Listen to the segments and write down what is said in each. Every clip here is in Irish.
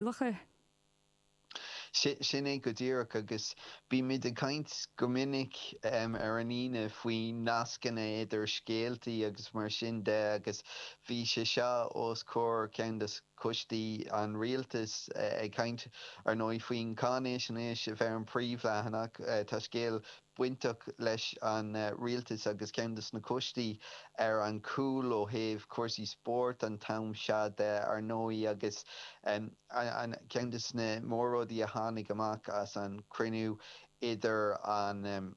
locha. Sin é go díreach, agus bímid ag caint go minic ar an Aoine faoi nascanna idir scéaltaí agus mar sin de agus bhí sé seo os comhair ceann de choistí an rialtais ag caint, ar ndóigh, faoin gcáinaisnéis a bheith ar an bpríomhleathanach. Tá scéal bainteach leis an rialtas agus ceann de sna coistí ar an gcúl ó thaobh cúrsaí spóirt an t-am seo de, ar ndóigh, agus ceann de sna mór-rudaí a tháinig amach as an gcruinniú idir an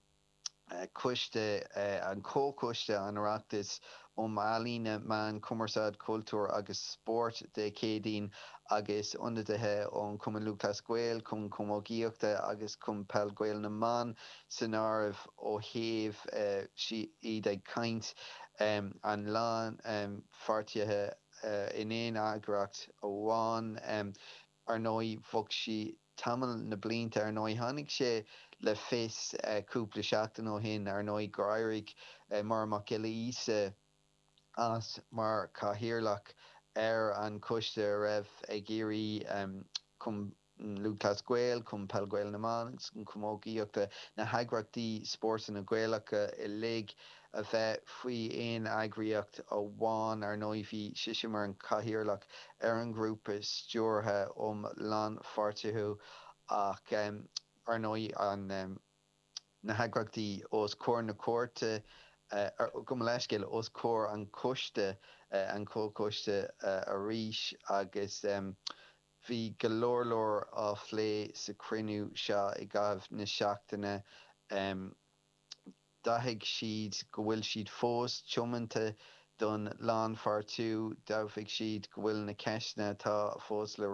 Coiste, an Comhchoiste Oireachtais um Ealaíona, Meáin, Cumarsáid, Cultúr agus Spórt Dé Céadaoin agus ionadaithe ón Chumann Lúthchleas Gael, Cumann Camógaíochta agus Cumann Peil Gael na mBan san áireamh ó thaobh iad ag caint. An lánpháirtiú in aon eagraíocht amháin. Ar ndóigh, bhog sí tamall na blianta. Ar ndóigh, tháinig sé le fios cúpla seachtain ó shin, ar ndóigh, gur éirigh Máire Mhic Giolla Íosa as mar chathaoirleach ar an choiste a raibh ag iarraidh Cumann Lúthchleas Gael, Cumann Peil Gael na mBan agus an Chamógaíochta, na heagraíochtaí spórtanna Gaelacha uilig, a bheith faoi aon eagraíocht amháin, ar ndóigh, bhí sise mar an Cathaoirleach ar an ghrúpa stiúrtha um lánpháirtiú, ach, ar ndóigh, na heagraíochtaí os comhair na cúirte, gabh mo leithscéal, os comhair an choiste, an comhchoiste arís, agus bhí go leor leor á phlé sa chruinniú seo i gcaitheamh na seachtaine d'áitigh siad go bhfuil siad fós tiomanta don lánpháirtiú, d'admhaigh siad go bhfuil na ceisteanna atá fós le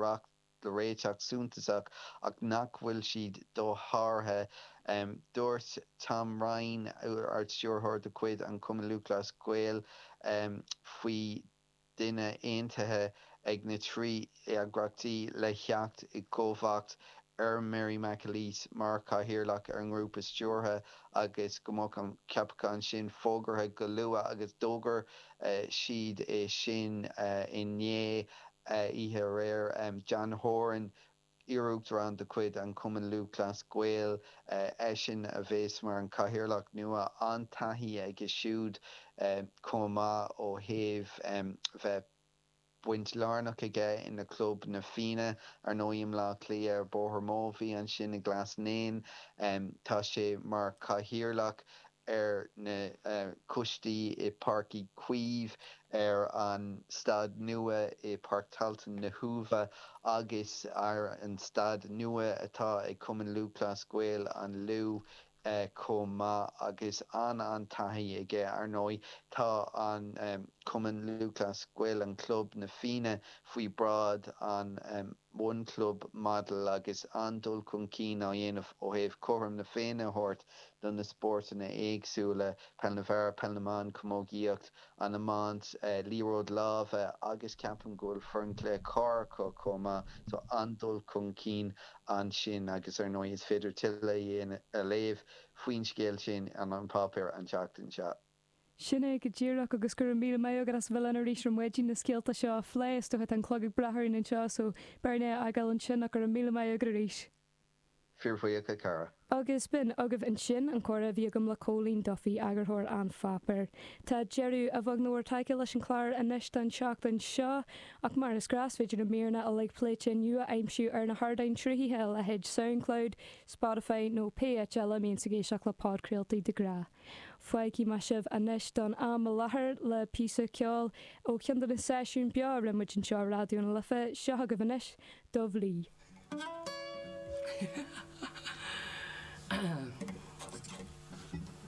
réiteach suntasach ach nach bhfuil siad dosháraithe. Dúirt Tom Ryan, Ard-Stiúrthóir de chuid an Chumainn Lúthchleas Gael faoi, duine aontaithe ag na trí eagraíochtaí le theacht i gcomharbacht ar Mary McAleese mar chathaoirleach ar an ngrúpa stiúrtha agus go mbeadh an ceapachán sin fógartha go luath agus d'fhógair siad é sin inné, oíche aréir. John Horan. Iar-Uachtarán de chuid an Chumainn Lúthchleas Gael eisean a bheas mar an Chathaoirleach nua. An-taithí aige siúd chomh maith ó thaobh bheith baint lárnach aige ina chlub Na Fianna, ar ndóigh, i mBleá Cliath ar Bóthar Móibhí ansin i nGlas Naíon. Tá sé mar Chathaoirleach ar na coistí i Páirc Uí Chaoimh, ar an staid nua i Páirc Tailteann na hUaimhe agus ar an staid nua atá ag Cumann Lúthchleas Gael an Lú chomh maith agus an-an-taithí aige. Ar ndóigh, tá an Cumann Lúthchleas Gael, an club, na Fianna faoi bhráid an. mbun club model agus an-dul chun cinn á dhéanamh ó thaobh cothrom na Féinne a thabhairt do na spórtanna éagsúla, peil na bhfear, peil na mban, camógaíocht, an iomáint, liathróid láimhe agus ceapaim go bhfuil foireann cluiche corr acu chomh maith. So an-dul chun cinn ansin agus ar ndóigh is féidir tuilleadh a léamh faoin scéal sin in An Páipéar an tseachtain seo. Sin é go díreach, agus go raibh míle maith agat as a bheith linn arís ar maidin leis na scéalta seo a phlé. Is dócha go bhfuil an clog ag breith orainn anseo, so beidh orainn é a fhágáil ansin, ach go raibh míle maith agat arís. Fíorbhuíoch, a chara. Agus b'in agaibh ansin an comhrá a bhí agam le Cóilín Duffy, eagarthóir an pháipéir. Tá deireadh, a bheag nó a mhór tagtha leis an chlár anois don tseachtain seo, ach mar is gnáth, is féidir na míreanna uilig pléite inniu a aimsiú ar na hardáin sruthaithe, a leithéid Soundcloud, Spotify nó pé áit eile a mbíonn tú ag éisteacht le podchraoltaí de ghnáth. Fágfaidh mé sibh anois don am i láthair le píosa ceoil ó cheann de na seisiúin beo a rinne muid anseo i Raidió na Life, seo agaibh anois Dubh Lee.